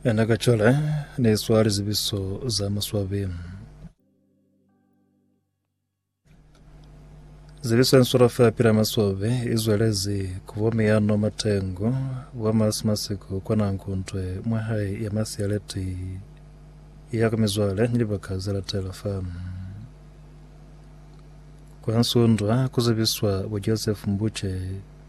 Ena ka cale ne swa lizibiso za maswabi. Zibiso en sura fa pila maswabi i zwelezi ku bo miyano matengo wa mas masiku kwa na nkuntwe mwa hai ya mas ya leti ya ku mizwale ni libaka za latela fa. Kwa nsundwa ku zibiswa bo Joseph Mbuche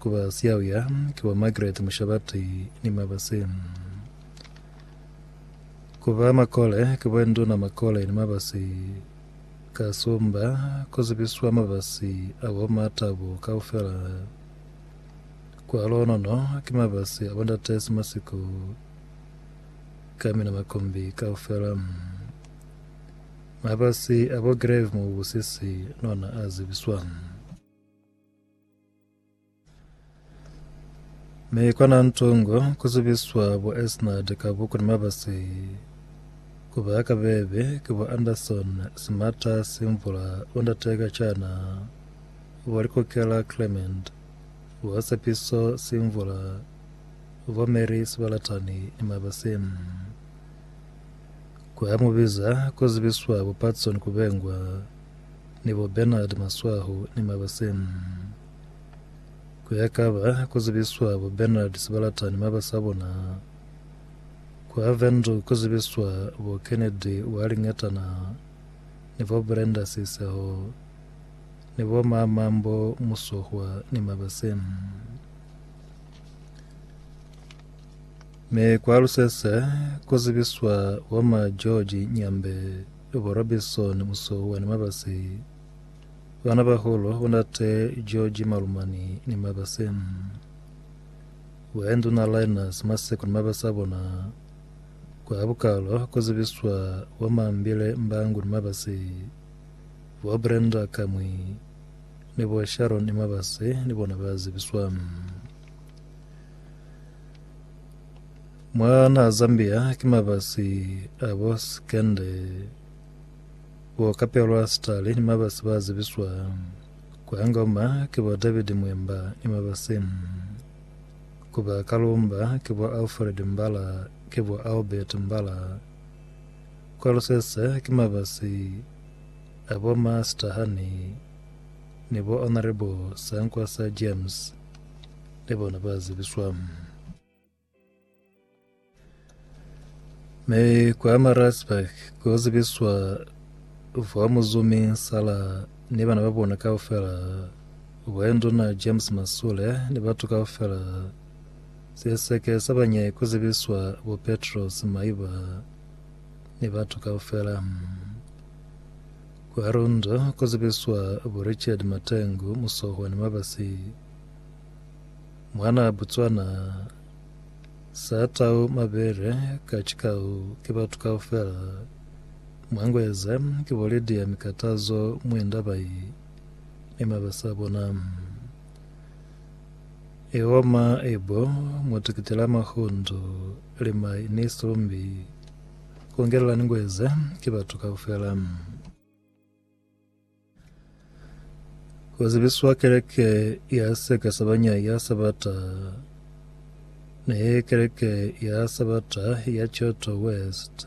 Ku ba siyauya ki bo Margaret Mushabati ni Mabase. Ku ba makole ki bo Nduna Makole ni Mabase. Ka Sumba ku zibiswa mabasi a bo ma Tabo kaufela. Kwa Lonono ki mabasi a bo Ndate Simasiko ka mina makombi kaufela. Mabasi a bo Grave Mubusisi nona a zibiswa. Mi kona ntungo kuzibiswa bo Esnard ka buku ni mabasi kuba ya kabebe ki bo Anderson Simata Simvula bo ndate ka chana bo Likokela Clement bo Sepiso Simvula bo Mary Sibalatani ni mabasi kwa mubiza kuzibiswa bo Patson Kubengwa ni bo Bernard Maswahu ni Mabase. Kuya kaba ku zibiswa bo Bernard Sibalata ni Mabase a bona, ku Avendu ku zibiswa bo Kennedy Ualingetana ni bo Brenda Siseho ni bo Ma Mambo Musohwa ni Mabase. Mi ku Alusese ku zibiswa bo Ma George Nyambe. Yo bo Robinson Musohua ni Mabase, bana baholo bo ndate George Malumani ni Mabase, Boya Nduna Linus Maseko ni Mabase a bona, kwa bukalo ku zibiswa bo Mambile Mbangu ni Mabase, bo Brenda Kamwi ni bo Sharon ni Mabase ni bona ba zibiswa. Mwa naha Zambia ki mabasi a bo Sikende bo kapelwa sitali ni mabasi ba zibiswa ku Angoma ki bo David Mwemba ni mabasi ku ba Kalumba ki bo Alfred Mbala ki bo Albert Mbala. Kwa Lusese ki mabasi a bo Ma Sitahani ni bo Honourable Sankwasa James. ni bona ba zibiswa. Mi kwa Maritzburg ku zibiswa vwa muzumi Sala ni bana ba bona kaufela, vwa nduna James Masule ni batu kaufela. Siseke sa banyai ku zibiswa bo Petros Maiba ni batu kaufela. Kwa Rundu ku zibiswa bo Richard Matengu, Musohwa ni Mabasi. Mwanaa Botswana sa tau mabele ka cikau ki batu kaufela mwa Ngweze ki bo Lydia Mikatazo Mwenda bai ni mabasa bona. I oma i bo Mutikiti la Mahundo Limai ni Sumbi ku ngelela ni Ngweze ki batu kaufela. Ku zibiswa keleke ya seka sa banya ya Sabata ne keleke ya Sabata ya Kyoto West,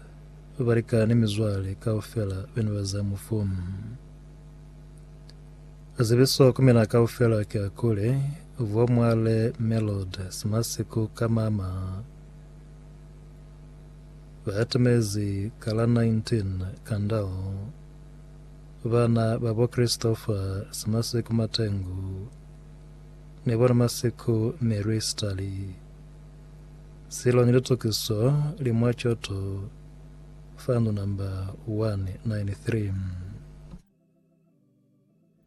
balika ni mizwale kaufela bene ba za mufu. Zibiso ku mina kaufela ki a kuli, Vo Mwale Melod Simasiku ka mama ba atamezi ka la 19 Kandal. Bana ba bo Christopher Simasiku Matengu ni bo Ramasiku Mary Stali Silo ni Litukiso li mwa Choto Fund Number 193.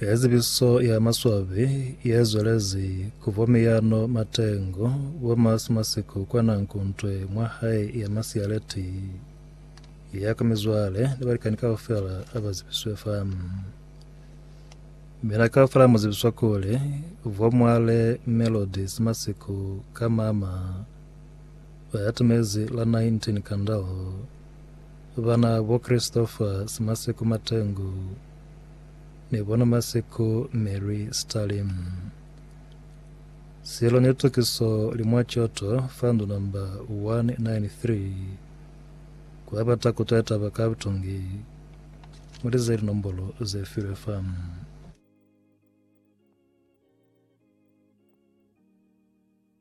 He zibiso ya maswabi ye zwelezi ku bo miyano matengo bo masi masiku kwa na nkuntwe mwa hae ya masiyaleti ya ka mizwale ni balikani kaufela a ba zibiswe fa. Mina kaufela mu zibiswa kuli bo mwale Melody Simasiku ka mama ba ya tumezi la 19 kandalo Bana bo Christopher Simaseko Matengu ni bona Maseko Mary Stalin. Silo ni litukiso li mwa coto fa ndu number 193 kwa bata ku twa taba ka butungi. Mu lize linombolo ze filwe fa.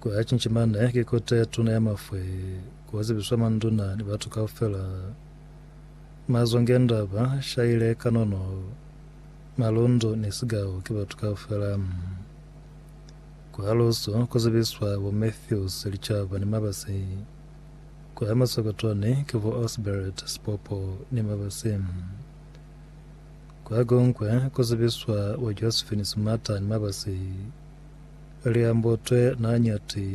Ku ya cinci mane ki kota ye tuna ya mafwe ku yo zibiswa manduna ni batu kaufela. Mazongenda ba shaile kanono, malundu ni sigau ki batu kaufela. Ku halusu ku zibiswa bo Matthews Licaba ni Mabasi. Ku ya masokotoni ki bo Osbert Sipopo ni Mabasi. Kwa kuñwi ku zibiswa bo Josephine Sumata ni Mabasi. liambutwe na ñati,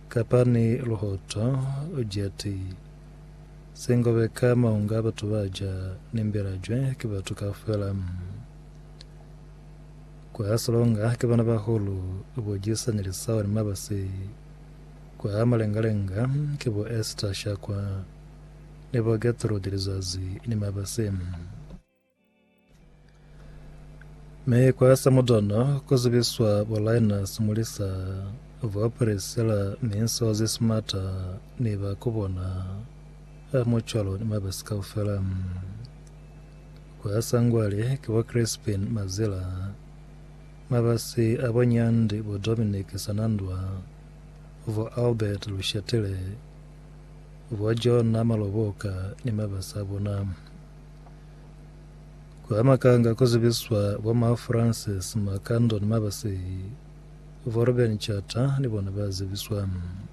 kapa ni luhoto jati, singobe ka maunga batu ba ja ni mbelajwe ki batu kaufela. Kwa silonga ki bana bahulu bo Jisani Lisao ni Mabasi, kwa malengalenga ki bo Esther Shakwa ni bo Getrude Lizazi ni Mabasi. Mi kwa samudana ku zibiswa bolaina simulisa vwa Priscilla ni nsozi simata ni ba ku bona a mucwalo ni mabasi kaufela. Kwa sangwali ki bo Crispin Mazila, mabasi a bo Nyandi, bo Dominic Sanandwa, vwa Albert Lushatile, vwa Jonah Maloboka ni mabasi a bona. Ku hamakanga ku zibiswa bo ma Francis Makando ni Mabasehi, bo Ruben Tshata ni bona ba zibiswa.